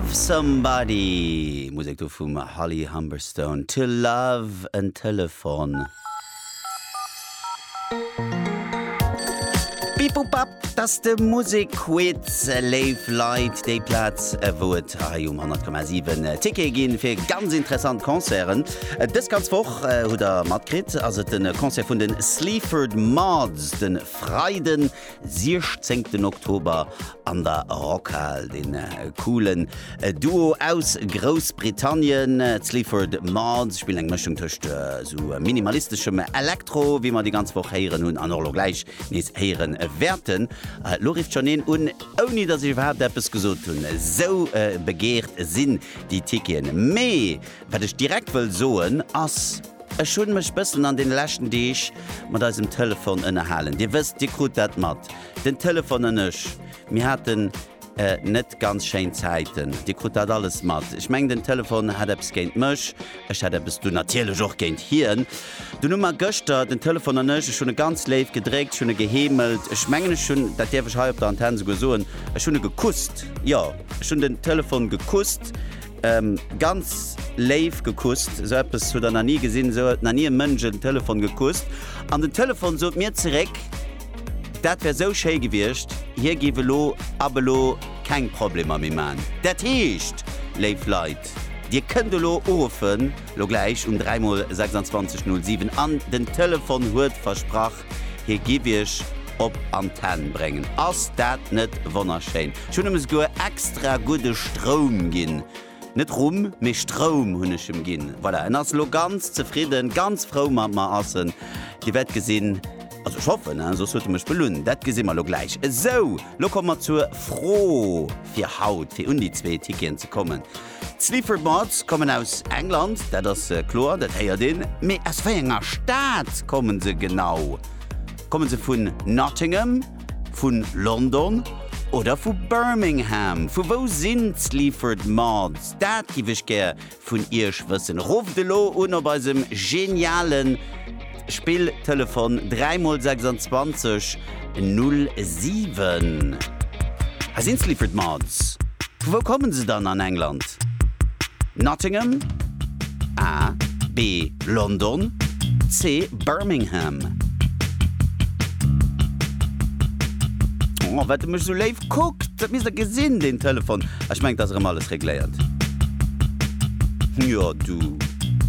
Love Somebody, Musek do vum Holly Humberstone, To Love en Telefon. Bip-Bop-Bap, dat ass de Musekquiz, léif Leit, déi Plaz, wou et hei um 100,7 Tickete ginn fir ganz interessant Concerten. Dës ganz Woch, hutt der matkritt, ass et de Concert vun de Sleaford Mods de Freiden 16 Oktober an der Rockhal den coolen Duo aus Groussbritannien, d'Sleaford Mods, spillen eng Mëschung tëscht esou minimalisteschem Elektro, wéi mer déi ganz Woch héieren hunn an och elo gläich nees héiere wäerten. Lo rifft schonn een un, ouni datt ech iwwerhaapt eppes gesot hunn, esou begeert sinn déi Ticketen. Mee wat ech direkt wëll soen ass. Ech hunn mech bëssen an den leschten Deeg mat eisem Telefon ënnerhalen. Dir wësst, Dir krut dat mat, den Telefon an ech, mir haten net ganz schéin Zäiten. Dir krut dat alles mat. Ech mengen den Telefon hat eppes géint mech, ech hat eppes du natierlech och géint hien. Dunn hu mer gëschter, den Telefon an ech, ech hunn e ganz léif gedréckt, ech hunn e geheemelt, ech mengen ech hunn, dat däerf ech hei op der Antenne souguer soen, ech hunn e gekusst. Jo, ech hunn den Telefon gekusst. Ganz léif gekusst. Esou eppes hutt der nach ni gesinn, esou huet nach ni e Mënsch en Telefon gekusst. An den Telefon sot mir zeréck, dat wär esou schéi gewiescht, hie géif elo ab elo keng Problemer méi man. Dat heescht, léif Leit, Dir kënnt elo uruffen, elo gläich um 3 mol 26 07 an den Telefon huet versprach, hie giff iech op Antenn bréngen. Ass dat net wonnerschéin? Ech hunn em esouguer extra gudde Stroum ginn. Net Rumm, mee Stroum hunn ech em ginn. Voilà, en ass elo ganz zefridden, ganz frou mat mer ass en. Dir wäert gesinn, also ech hoffen, hein, soss huet e mech belunn, dat gesi mer elo gläich. Esou, elo komme mer zur Fro fir haut, fir un déi zwee Ticketen ze kommen. D'Sleaford Mods kommen aus England, dat ass kloer, dat héiert een. Mee aus wéi enger Stad kommen se genau? Kommen se vun Nottingham, vun London oder vu Birmingham? Vu wou sinn d'Sleaford Mods? Dat giff ech gär vun iech wëssen. Rufft elo un op eisem genialen. Spill Telefon 3 mol 26 null 7. Hei sinn d'Sleaford Mods. Vu wou kommen se dann an England? Nottingham, A, B, London, C, Birmingham. Oh, wat de mech sou léif kuckt, dat misst der gesinn, deen Telefon. Ech mengt, ass erëm alles regléiert. Jo, du.